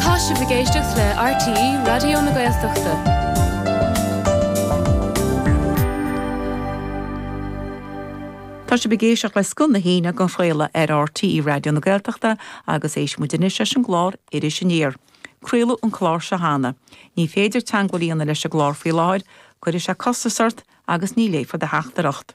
Tá sibh ag éisteacht le RTÉ Raidió na Gaeltachta. Tá sibh ag éisteacht le Scoth na hAoine á chraoladh ar RTÉ Raidió na Gaeltachta agus éistfidh muid anois leis an gclár Iris Aniar. Craoladh an clár seo cheana. Ní féidir teagmháil a dhéanamh leis an gclár faoi láthair, cuirfidh sé costas ort agus ní léifear do theachtaireacht.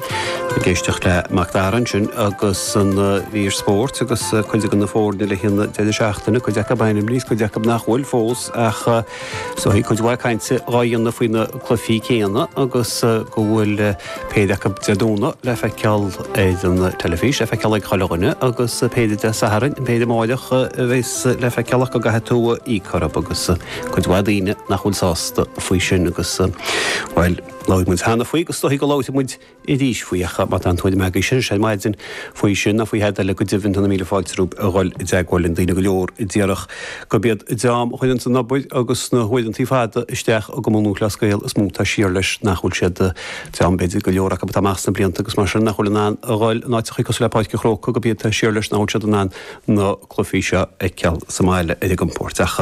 Ag éisteacht le Macdara ansin agus an mhír spóirt agus cuid de na foirne le haghaidh an deireadh seachtaine, cuid acu ainmnithe, cuid acu nach bhfuil fós ach so bhí cuid mhaith cainte á dhéanamh faoi na cluichí céanna agus go bhfuil péire acu Dé Domhnaigh le feiceáil ar an teilifís, le feiceáil ag chuile dhuine agus péire Dé Sathairn, péire amárach a bheas le feiceáil ach go gcaithfidh tú íoc orthu agus cuid mhaith daoine nach bhfuil sásta faoi sin agus bhuel, Labhair muid cheana faoi agus is dóichí go labhróidh muid arís faoi ach má tá aon tuairim agaibhse ar maidin, faoi sin ná faoi thada eile, go deimhin tá na míle fáilte romhaibh a dhul i dteagmháil linn, daoine go leor a déarfadh gurb iad an dream a chuireanns an obair agus na huaireantaí fada isteach i gCumann Lúthchleas Gael is mó atá siar leis, nach bhfuil siad, dream b'fhéidir, go leor acu atá amach sna blianta agus mar sin nach bhfuil in ann a dhul in áiteachaí cosúil le Páirc an Chrócaigh, gurb iad atá siar leis nach bhfuil siad in ann na cluichí seo a fheiceáil sa mbaile ar a gcompóirt ach.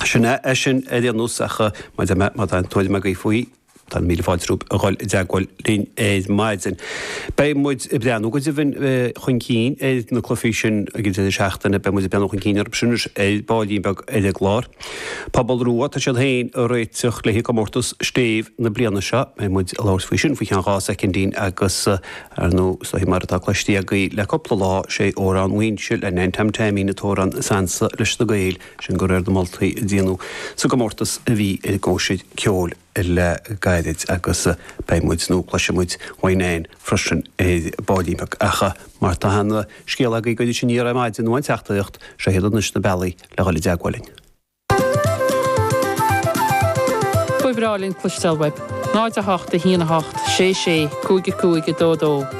Sin é é sin ar aon nós, ach mar a deirim má tá aon tuairim agaibh faoi, tá míle fáilte romhaibh a dhul i dteagmháil linn ar maidin. Beidh muid ag breathnú go deimhin chun cinn ar na cluichí sin ag an deireadh seachtaine, beidh muid ag breathnú chun cinn orthu sin anois ar ball beag ar an gclár. Pobal Rua, tá siad féin ag réiteach le haghaidh comórtas Stéibh na bliana seo, beidh muid ag labhairt faoi sin faoi cheann dhá soicindín agus ar ndú, is dóigh, mar atá cloiste agaibh le cúpla lá, sé Amhrán Mhaínse le Nan Tom Taimín an t-amhrán is ansa leis na Gaeil. sin de réir na moltaí a déanadh sa gcomórtas a bhí i gCóisir Cheoil le gairid agus beidh muid, nó cloisfidh muid uaidh Nan freisin ar ball beag ach má tá aon scéal agaibh do Iris Aniar ar maidin nó aon teachtaireacht, seo iad anois na bealaí le dhul i dteagmháil linn. Ba bhreá linn cloisteáil uaibh. 08 1 8 6 6 5 5 2 2.